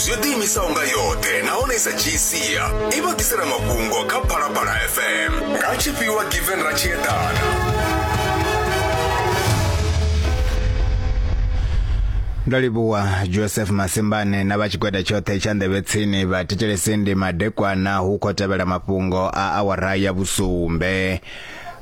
zwi yo ḓiimisaho nga yoṱhe nahone i sa dzhii sia i vha ḓisela mafhungo kha phalaphala fm nga tshifhiwa given ra tshi eḓana ndo livhuwa joseph masimbane na vha tshigwada tshoṱhe tsha nḓevhe tsini vha thetshelesindi madekwana hu khou tevhela mafhungo a awara ya vhusumbe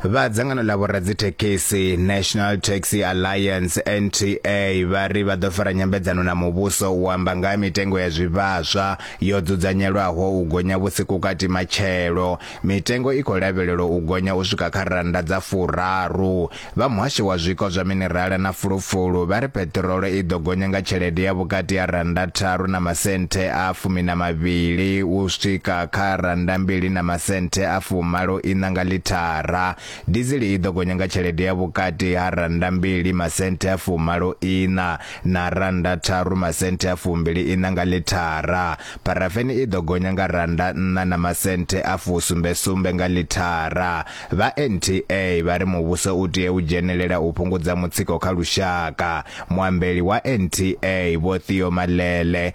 vha dzangano ḽa vhoradzithekhisi National Taxi Alliance NTA vha ri vha ḓo fara nyambedzano na muvhuso u amba nga ha mitengo ya zwivhaswa yo dzudzanyelwaho u gonya vhusiku kati matshelo mitengo i khou lavhelelwa u gonya u swika kha rannda dza furaru vha muhasho wa zwiko zwa minerala na fulufulu vha ri peṱirolo i ḓo gonya nga tshelede ya vhukati ha rannda tharu na masenthe a fumi na mavhili u swika kha rannda mbili na masenthe a fumalo iṋa nga ḽithara. Dizili i ḓo gonya nga tshelede ya vhukati ha rannda mbili masenthe a fumalo iṋa na rannda tharu masenthe a fumbili iṋa nga ḽithara. Pharafeni i ḓo gonya nga rannda nṋa na masenthe a fusumbe sumbe nga ḽithara. Vha NTA vha ri muvhuso u tea u dzhenelela u fhungudza mutsiko kha lushaka. Muambeli wa NTA Vho Theo Malele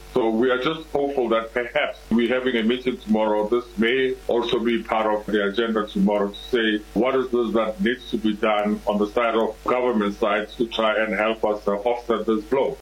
We are just hopeful that perhaps we're having a meeting tomorrow. This may also be part of the agenda tomorrow to say what is this that needs to be done on the side of government side to try and help us uh, offset this blow.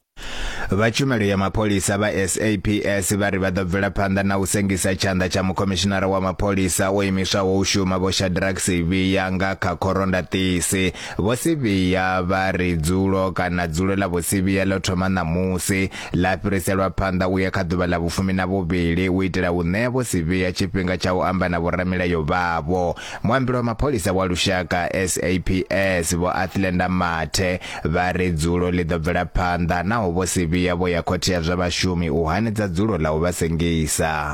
vha tshumelo ya mapholisa vha SAPS vha ri vha ḓo bvela phanḓa na u sengisa tshanḓa tsha mukhomishinara wa mapholisa o imiswaho u shuma vho Shadrack Sivhiya nga kha khorondaṱisi vho Sivhiya vha ri dzulo kana dzulo ḽa vho Sivhiya ḽo thoma ṋamusi ḽa fhiriselwa phanḓa u ya kha ḓuvha ḽa vhufumi na vhuvhili u itela u ṋea vho Sivhiya tshifhinga tsha u amba na vhoramilayo vhavho. Muambeli wa mapholisa wa lushaka, SAPS, Vho Athlenda Mathe, vha ri dzulo ḽi ḓo bvela phanḓa naho vho Sivhiya vho ya khothe ya zwa vhashumi u hanedza dzulo ḽa u vha sengisa.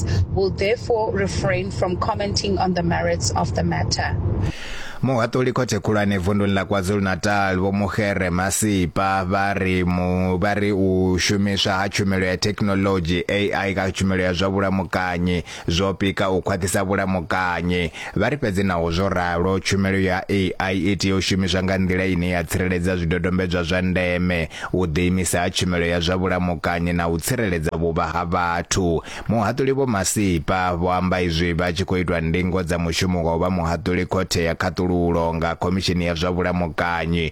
Christ will therefore refrain from commenting on the merits of the matter. Muhaṱuli khothe khulwane vunduni ḽa KwaZulu-Natal vho Muhere Masipa vha ri mu vha ri u shumiswa ha tshumelo ya thekinoḽodzhi AI kha tshumelo ya zwa vhulamukanyi zwo pika u khwaṱhisa vhulamukanyi Vha ri fhedzi naho zwo ralo, tshumelo ya AI i tea u shumiswa nga nḓila ine ya tsireledza zwidodombedzwa zwa ndeme, u ḓiimisa ha tshumelo ya zwa vhulamukanyi na u tsireledza vhuvha ha vhathu. Muhaṱuli Vho Masipa vho amba izwi vha tshi khou itwa ndingo dza mushumo wa u vha muhaṱuli Khothe ya Khaṱululo nga Khomishini ya zwa Vhulamukanyi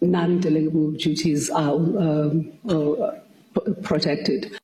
non-delegable duties are um, uh, protected.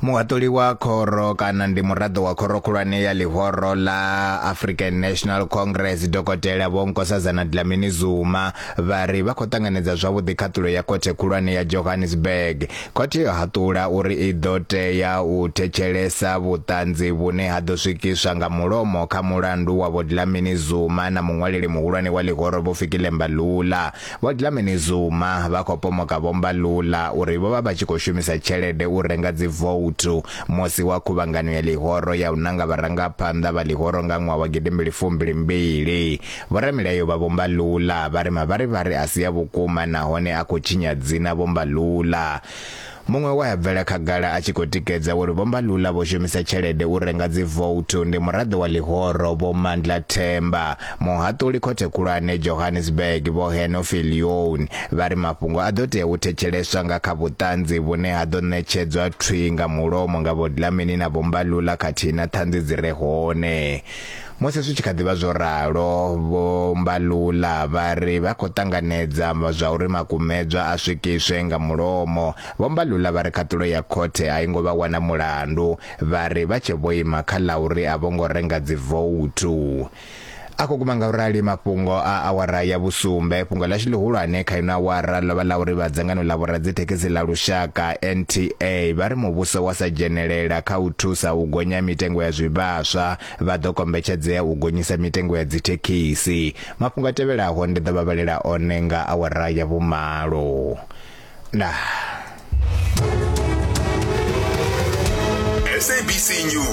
muhaṱuli wa khoro kana ndi muraḓo wa khoro khulwane ya ḽihoro ḽa african national congress dokotela vho nkosazana dlamini zuma vha ri vha khou ṱanganedza zwavhuḓi khaṱulo ya khothe khulwane ya johannesburg Khothe yo haṱula uri i ḓo tea u thetshelesa vhuṱanzi vhune ha ḓo swikiswa nga mulomo kha mulandu wa Vho Dlamini Zuma na muṅwaleli muhulwane wa ḽihoro Vho Fikile Mbalula. Vho Dlamini Zuma vha khou pomoka Vho Mbalula uri vho vha vha tshi khou shumisa tshelede u renga dzivouthu musi wa khuvhangano ya ḽihoro ya u nanga vharangaphanḓa vha ḽihoro nga ṅwaha wa gidimbili fumbili mbili. Vhoramilayo vha Vho Mbalula vha ri mavharivhari a si a vhukuma nahone a khou tshinya dzina Vho Mbalula. Muṅwe we a bvela khagala a tshi khou tikedza uri Vho Mbalula vho shumisa tshelede u renga dzivouthu ndi muraḓo wa ḽihoro Vho Mandla Themba. Muhaṱuli Khothe Khulwane Johannesburg Vho Henofi Lyoun vha ri mafhungo a ḓo tea u thetsheleswa nga kha vhuṱanzi vhune ha ḓo ṋetshedzwa thwi nga mulomo nga Vho Dlamini na Vho Mbalula khathihi na ṱhanzi dzi re hone. Musi zwi tshi kha ḓi vha zwo ralo, Vho Mbalula vha ri vha khou ṱanganedza zwa uri makumedzwa a swikiswe nga mulomo. Vho Mbalula vha ri khaṱulo ya khothe a i ngo vha wana mulandu, vha ri vha tshe vho ima kha ḽa uri a vho ngo renga dzivouthu. A khou guma ngaurali mafhungo a awara ya vhusumbe. Fhungo ḽashu ḽihulwane kha ino awara ḽo vha ḽa uri vha dzangano ḽa vhoradzithekhisi ḽa lushaka, NTA, vha ri muvhuso wa sa dzhenelela kha u thusa u gonya mitengo ya zwivhaswa Vha ḓo kombetshedzea u gonyisa mitengo ya dzithekhisi. Mafhungo a tevhelaho ndi ḓo vha vhalela one nga awara ya vhumalo. Ndaa. SABC News.